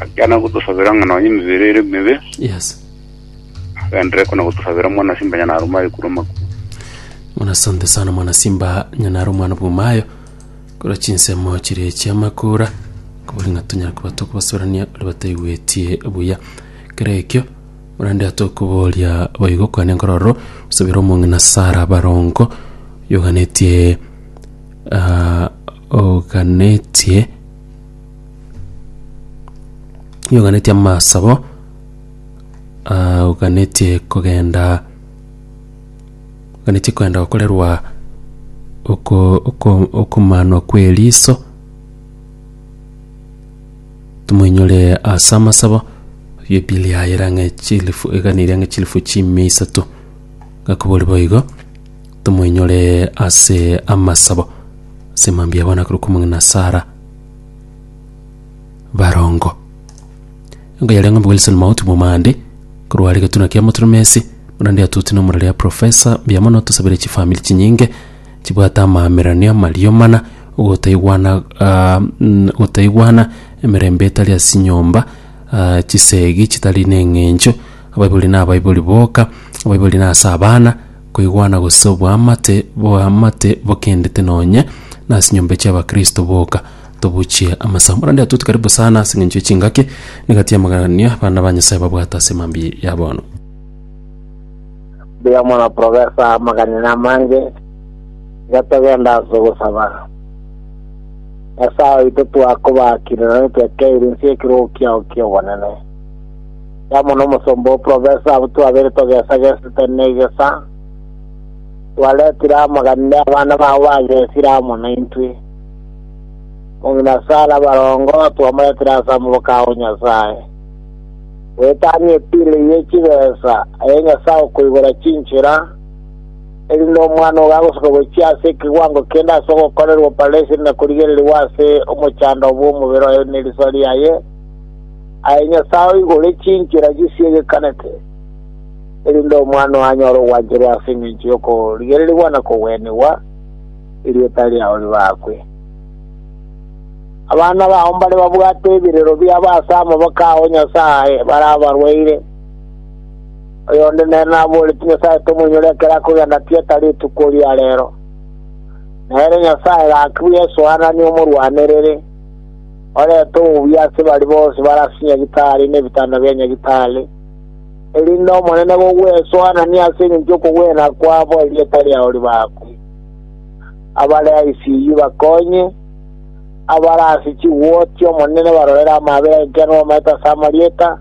Agakana gotosabera ng'a nonya emebere ere emebe, Yes. agenderere kona gotosabera mwana simba nyana arumaye korwa amakuo. Muna asante sana mwana simba nyanaro mwana bwomayo korwa chinsemo chire chiamakura kobori ng'a tonyara koba tokobasorania ore bataigwetie buya kero ekio orende atokoboria boigo kwane nkororo osabera omong'ina sara barongo yoganetie ah, oganetie oganetie amasabo ah, oganetie kogenda oganetie kogenda gokorerwa oko- oko- okomanwa kw'eriso tomoinyore ase amasabo ebili yaye era ng'a chilifu eganiria ng'a chilifu chimia isato gakobori boigo tomoinyore ase amasabo ase mambia abana korwa kwa omong'ina Sara barongo engo yaria ng'ombe wilson mauti momande korwa are getuna kia motoromesi buna ndia tuti nomura ria profesa mbuya mono tosabire chifamiri chinyinge chibwate amaamerario amario mana ogotaigwana ah, mm, ogotaigwana emerembe etari ase chinyomba ah, chisegi chitari na eng'encho abaibori na abaibori boka abaibori na ase abana Koigwana gose oboamate boamate bokendete nonye nase nyomba chi'abakristo boka. Tobuchie amasamu. Bono ndia tuti karibu sana ase eng'encho ye chingaki. Nigati amagania abana ba Nyasaye babwate ase mambia ya bono. Mbuya mono Professor, amagania namange. Iga togenda ase ogosaba. Nyasae oito twakobaakire na nitwekeire inse y'ekirogo kiao ki'obonene. Amo n'omosomba o Provensi abwo twabere togesagesete negesa, twaretire amaganinde abana bao bagesire amo naintwe. Omong'ina Sara barongo twamoretire ase amaboke ao Nyasae, goetania epile ye chibesa eye Nyasae okoigora chinchera, erinde omwana ogo agosoka gochia ase ekegwango kende ase ogokorerwa opareseni na korigererigwa ase omochando bw'omobere oye ne riso riaye, Aye Nyasae oigure chinchera chisiegekanete, erinde Omwana oo anyore ogwancherwa ase engencho y'okorigererigwa na kogwenigwa, erieta riao ribaakwe. Abana bao mbare babwate ebirero biabo ase amaboko ao Nyasae bare abarwaire, oyonde nere naboorete Nyasae tomoinyore ekero akogenda tieta rituko ria reero. Nere Nyasae gaki bw'esoa nani omorwanerere? Orente obuya ase baria bonsi bare ase nyagitari na ebitanda bia nyagitari, erinde Omonene gogwesoanania ase engencho y'okogwena kwabo erieta riao ribakwe. Abare ICU bakonye, abare ase chiwoti Omonene barorere amaabera enkiano bamaete ase amarieta,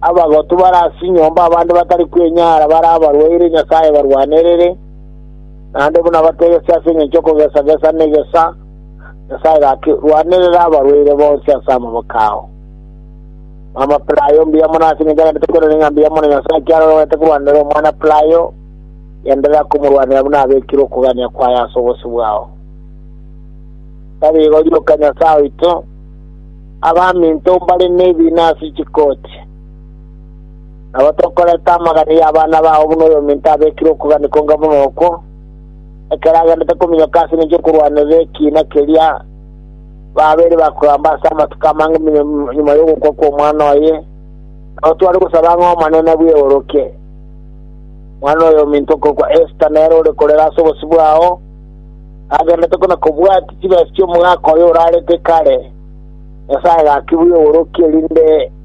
abagotu bare ase chinyomba abande batari kwenyara bare abarwaire Nyasae barwanerere, naende buna bategesie ase engencho y'okogesa-gesa na egesa, Nyasae gaki, rwanerera abarwaire bonsi ase amaboko ao. Mama Pelayo, mbuya mono ase engencho agende tokorereri ng'a mbuya mono Nyasae ekiagera orwete korwanera omwana Pelayo, genderera komorwanera buna abekire okogania kwaye ase obosio bwao. Tarigo rioka Nyasae oito, abaminto mbare nebiina ase chikoti. Nabo tokoreta amagani y'abana bao buna oyominto abekire okogania konga buna okwo, ekero agendete kominyoka ase engencho y'okorwanera ekiina keria, babeire bakogamba ase amatuko amange buna nyuma y'ogokwa kw'omwana oye, nabo tware gosaba ng'a Omonene abweoroke. Mwana oye ominto okorokwa Esta nere ore korera ase obosibwa ao, agendete kona kobwatia chibesa chi'omogaka oye orarete kare. Nyasaye gaki bweoroke, erinde